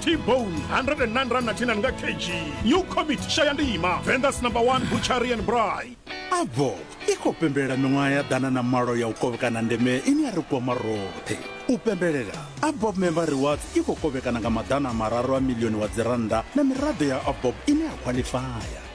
t-bone 109 rand na 10 nga kg new commit shaya ndima vendas number 1 butchery and bry avob i khou pembelela miṅwaha ya ḓana na malo ya u kovhekana ndeme ine ya ri kwama roṱhe u pembelela abob member rewards i khou kovhekana nga maḓana mararu a milioni wa dzirannda na miraḓo ya abob ine ya khwaḽifaya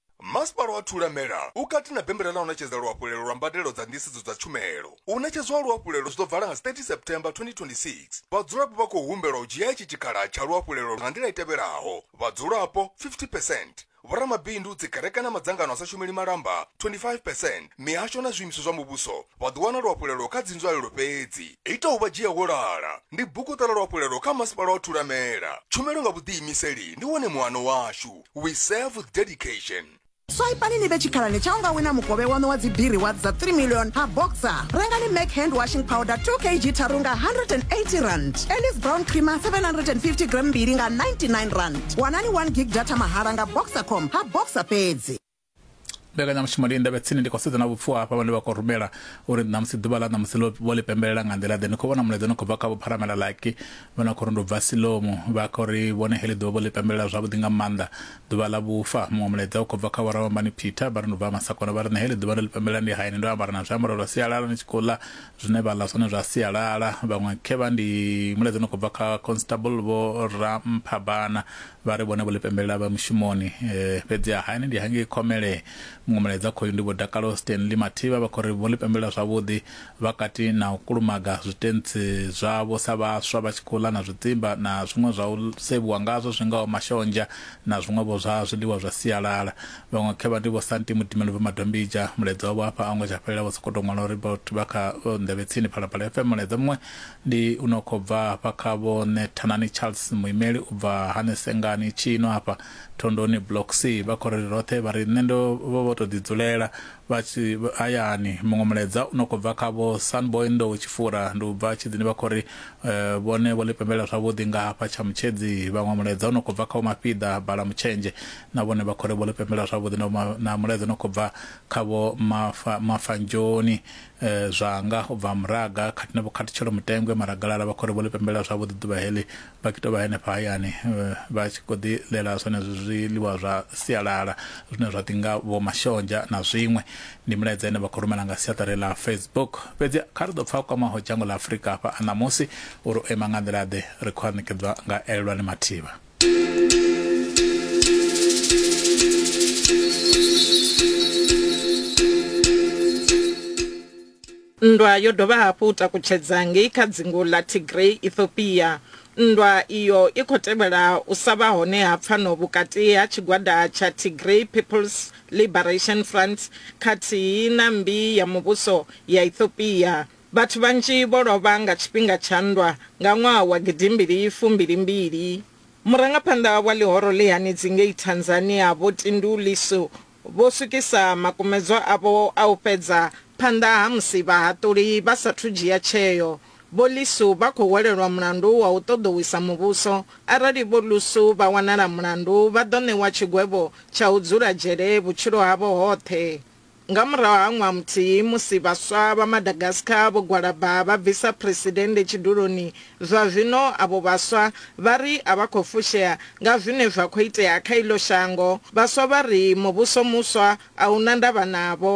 Masipala wa Thulamela u kati na bembela ḽa u ṋetshedza luhafhulelo lwa mbadelo dza nḓisedzo dza tshumelo. U ṋetshedzwa ha luhafhulelo zwi ḓo vala nga 30 September 2026. Vhadzulapo vha khou humbelwa u dzhia itshi tshikhala tsha luhafhulelo nga nḓila i tevhelaho, vhadzulapo 50 percent, vhoramabindu, dzikereke na madzangano a sa shumeli malamba 25 percent, mihasho na zwiimiswa zwa muvhuso vha ḓo wana luhafhulelo kha dzinzwalelo fhedzi. Ita u vha dzhia wo lala ndi buguṱa ḽa luhafhulelo kha Masipala wa Thulamela. Tshumelo nga vhuḓiimiseli ndi wone muano washu. we serve with dedication swaipani ni vhe tshikhalani tsha unga wina mukovhe wanu wa dzibiri wa dza 3 million ha boxer rengani mac hand washing powder 2 kg tharu nga 180 rand elis brown creamer 750 gram mbili nga 99 rand wanani 1 gig data mahala nga boxer com ha boxer fhedzi mbekanyamushumo ndi ndavhe tsini ndi khou sedza na vhupfuwa hafha vhane vha khou rumela uri ṋamusi ḓuvha ḽa ṋamusi vho ḽi pembelela nga nḓila ḓe ni khou vhona mulaedza ni khou bva kha vhopharamela laki vha na khou ri ndo bva silomu vha khou ri vhone heḽi ḓuvha vho ḽi pembelela zwavhuḓi nga maanḓa ḓuvha ḽa vhufa muṅwe mulaedza u khou bva kha vhoravhambani peter vha ri ndo bva masakona vha ri nṋe heḽi ḓuvha ndo ḽi pembelela ndi hayani ndo ambara na zwiambaro zwa sialala ni tshi khou ḽa zwine vha ḽa zwone zwa sialala vhaṅwe khevha ndi mulaedza ni khou bva kha constable vho ramphabana vha ri vhone vho ḽi pembelela vha mushumoni eh, fhedziha hayani ndi hangei khomele muṅwe mulaedza khoyu ndi vho dakalo stanley mathivha vha khou ri vho ḽi pembelela zwavhuḓi vha kati na u kulumaga zwitentsi zwavho sa vhaswa vha tshi khou ḽa na zwidzimba na zwiṅwe zwa u sevhiwa ngazwo zwi ngaho mashonzha na zwiṅwevho zwa zwiḽiwa zwa sialala vhaṅwe khevha ndi vho santi mudimelo vha madombija mulaedza wavho hafha a ngo tsha fhelela vho sokou tou ṅwala uri vha kha nḓevhe tsini phalaphala fm mulaedza muṅwe Ndi u no khou bva hafha kha Vho Ṋe Thanani Charles, muimeli u bva hane Sengani, Tshino hafha Thondoni Block C. Vha khou ri roṱhe vha ri nṋe ndo vha vho tou ḓidzulela vha tshi hayani. Muṅwe mulaedza u no khou bva kha Vho Sunboy Ndowe Tshifura, ndi u bva Tshidzini vha khou ri vhone vho ḽi pembelela zwavhuḓi nga hafha Tshamutshedzi. Vhaṅwe mulaedza u no khou bva kha Vho Mafhiḓa Balamutshenzhe, na vhone vha khou ri vho ḽi pembelela zwavhuḓi. Na mulaedza u no khou bva kha Vho Mafa, Mafanjoni eh, zwanga u bva muraga khathihi na vhukhathutshelo mutengwe maragalala vha khori vho ḽi pembelela zwavhuḓi ḓuvha heḽi vha tshi tou vha henefha hayani eh, vha tshi khou ḓi ḽela zwenezwi zwiḽiwa zwa sialala zwine zwa ḓi nga vho mashonzha na zwiṅwe ndi milaedza ine vha khou rumela nga siaṱari ḽa facebook fhedzi kha ri ḓo pfa kwamaho dzhango ḽa afurika hafha a ṋamusi uri o ima nga nḓila ḓe ri khou a ṋekedzwa nga elelwani mathivha nndwa yo dovha hafhu u takutshedza ngei kha dzingu ḽa Tigray, Ethiopia. Nndwa iyo i khou tevhela u sa vha hone ha pfano vhukati ha tshigwada tsha Tigray People's Liberation Front khathihi na mmbi ya muvhuso ya Ethiopia Vhathu vhanzhi vho lovha nga tshifhinga tsha nndwa nga ṅwaha wa gidimbili fumbili mbili. Murangaphanḓa wa ḽihoro ḽi hanedzi ngei Tanzania Vho Tindu Lissu vho swikisa makumedzwa avho a u fhedza phanḓa ha musi vhahaṱuli vha sathu dzhia tsheo. Vho Lissu vha khou hwelelwa mulandu wa u ṱoḓou wisa muvhuso. Arali Vho Lussu vha wanala mulandu vha ḓo ṋewa tshigwevho tsha u dzula dzhele vhutshilo havho hoṱhe. Nga murahu ha ṅwaha muthihi musi vhaswa vha Madagascar vho gwalaba vha bvisa Phresidennde tshiduloni, zwa zwino avho vhaswa vha ri a vha khou fushea nga zwine zwa khou itea kha iḽo shango. Vhaswa vha ri muvhuso muswa a u na ndavha navho.